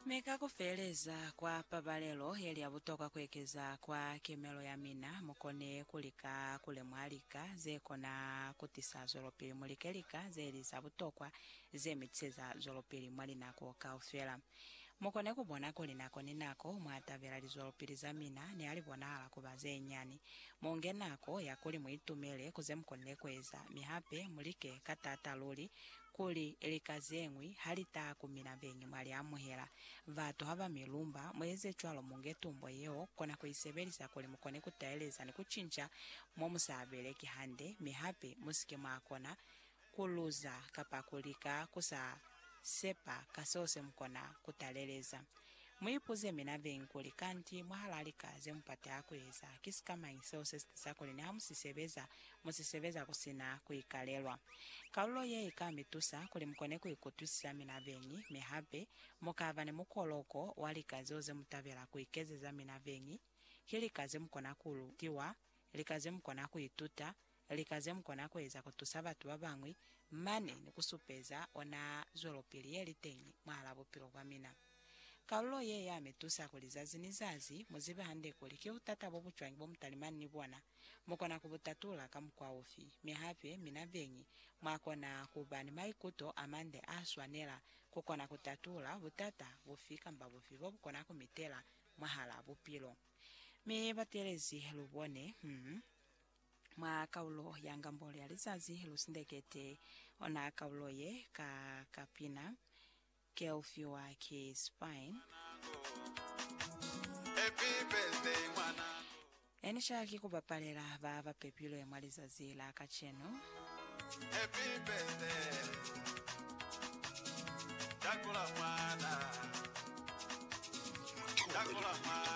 Mi ka ku feleza kwa pabalelo ye li ya butokwa ku ekeza kwa kemelo ya mina, mu kone ku lika ku lemuha lika ze kona ku tisa zwelopili. Mu like lika ze li za butokwa ze mi tiseza zwelopili mwa linako kaufela. Mu kone ku bona kuli nako ni nako mwa tabela lizwelopili za mina ni ha li bonahala ku ba ze nyani. Mu nge nako ya kuli mu itumele ku ze mu konile ku eza, mi hape mu like ka taata luli Kuli lika zeñwi ha li taha ku mina beñi mwa li amuhela. Batu ha ba mi lumba, mu eze cwalo, mu nge tumbo yeo, kona ku i sebelisa kuli mu kone ku taeleza ni ku cinca mo mu sa beleki hande, mi hape mu si ke mwa kona ku luza kapa ku lika ku sa sepa ka seo se mu kona ku taleleza. Mu ipuze mina beng kuli, Kanti mwahalaa lika ze mu pateha ku eza, ki sika mañi seo se si tiza kuli niha mu si sebeza, mu si sebeza ku si na ku ikalelwa? Kalulo ye i ka mi tusa kuli mu kone ku ikutwisisa mina beñi, mi hape mu ka ba ni mukoloko wa lika zeo ze mu tabela ku ikezeza mina beñi. Ki lika ze mu kona ku lutiwa, lika ze mu kona ku ituta, Lika zemukona kueza kutusa batu babañwi mane ni kusupeza ona zwelopili yeliteñi mwahala bupilo bwamina. Kalulo ye ya mitusa kuli zazi ni zazi muzibe hande kuli ki butata bobucwañi bomutalimani ni bona, mukona kubutatula ka mukwa ufi, mi hape mina beñi mwakona kuba ni maikuto amande aaswanela kukona kutatula butata bufi kamba bufi bobukona kumitela mwahala bupilo. Mi batelezi lubone, mm. mwa kaulo ya ngambolo ya lizazi lusindekete ona kaulo ye ka kapina keufiwa ki Spine. Happy birthday mwanangu. Enisha ki kubapalela ba bapepilwe mwa lizazi la kacenu. Happy birthday. Takula mwana. Takula mwana.